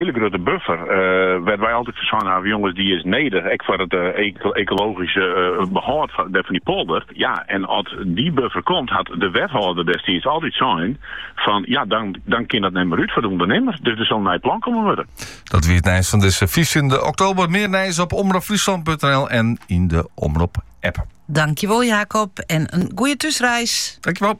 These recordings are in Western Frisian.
hiele grutte buffer, wêrfan wy altyd foar sein hawwe, jonges, dy is nedich, ek foar it ekologyske behâld fan dy polder. Ja, en as dy buffer komt, hat de wethâlder destiids altyd sein fan, ja, dan kin dat net mear út foar de ûndernimmer, dus dat sil in nij plan kommen wurde. Dat wie it nijs fan dizze fyftjinde oktober. Mear nijs op omropfryslân.nl en yn de Omrop-app. Dankjewol Jacob en in goeie thúsreis. Dankjewel.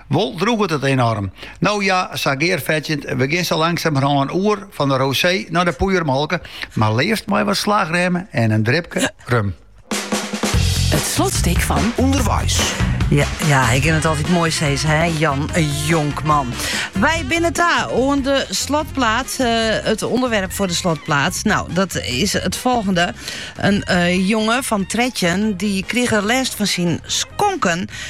Wol drûget it enoarm. No ja, sa gearfetsjend, we gean sa langsamerhân oer fan de rosé nei de poeiermolke, mar leafst mei wat slagrême en in dripke rum. It slotstik fan Underweis. Ja, ja, ik ken it altyd mooi steeds, hè, Jan Jonkman. Wy binne ta oan de slotplaat. Eh, it ûnderwerp foar de slotplaat. No, dat is it folgjende. In eh, jonge fan trettjin dy krige lêst fan syn skonken.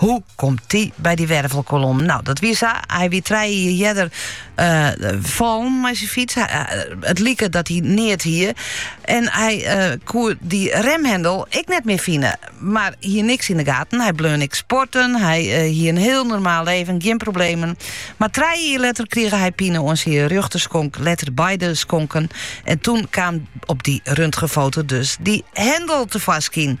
Hoe komt dy by dy wervelkolom? No, dat wie sa. Hy wie trije jier earder uh, fallen mei syn fyts. Hy, uh, it like dat er neat hie. En hy uh, koe dy remhendel ek net mear fine. Mar hie niks yn de gaten. Hy bleaun ek sporten. Hy uh, hie in hiel normaal libben, gjin problemen. Mar trije jier letter krige hy pine oan syn rjochterskonk, letter beide skonken. En toen kaam op dy röntgenfoto dus dy hendel tefoarskyn.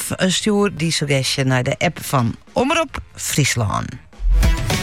Omrop. Stjoer dyn suggestje nei de app fan Omrop Fryslân.